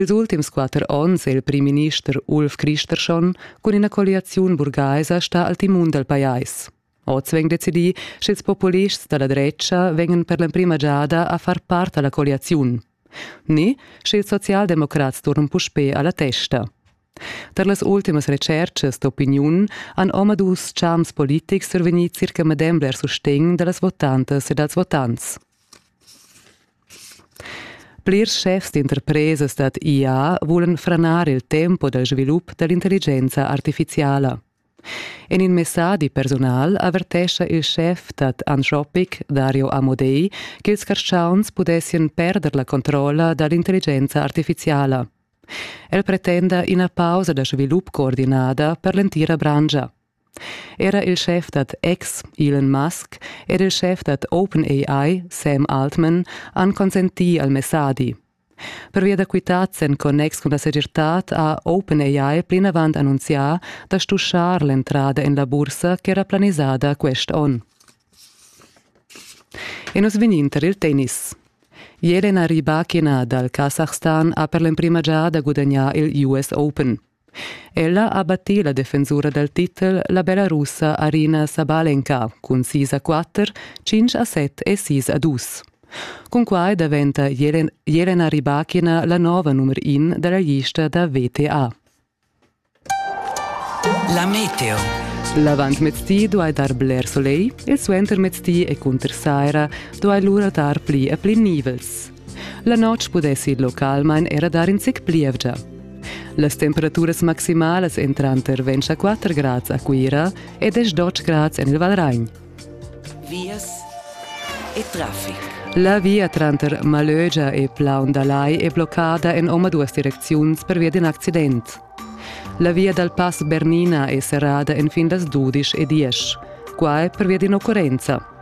Ils ultims quatter onns è il primminister Ulf Kristersson cun ina colliaziun burgaisa stà al timun dal pajais. Oz vegn decidì, sch'ils populists da la drecha vegnan per l'emprima giada a far part a la colliaziun. Ni, sche ils socialdemocrats turnan puspè a la testa. Tar las ultimas retschertgas d'opiniun han omadus champs politics survegnì circa medem bler sustegn da las votantas e dals votants. Plirs schefs d'interpresas dad IA vulan franar il tempo dal svilup da l'intelligenza artifiziala. En in messadi personal avertescha il schef dad Anthropic Dario Amodei ch'ils carschauns pudessien perder la controlla da l'intelligenza artifiziala. El pretenda ina pausa da svilup coordinada per l'entira branscha. Era il schef dad ex Elon Musk ed il schef dad OpenAI Sam Altman han consentì al messadi. Pervia da quitads en connex cun la segirtad ha OpenAI plinavant annunzià da stuschar l'entrada en la bursa ch'era planisada quest onn. E nus vegnin tar il tennis. Jelena Rybakina dal Kasachstan ha per l'emprima giada gudagnà il US Open. Ella ha battì la defensura dal titel la Belarussa Arina Sabalenka cun sis a quatter, tschintg a set e sis a dus. Cun quai daventa Jelen Jelena Rybakina la nova numero in da la lista da VTA. La meteo. L'avantmezdi duai dar bler soleil, il suentermezdi e cunter saira duai lura dar pli e pli nivels. La notg pudessi il localmain era dar in zic plievgia. Las temperaturas maximalas èn tranter 24 grads a Cuira e 10 grads en il Valragn. Vias e traffic. La via tranter Malögia e Plaun da Lai è bloccada en omaduas direcziuns pervia d'in accident. La via dal Pass Bernina è serrada en fin las dudisch e diesch. Qua è pervia d'in occurrenza.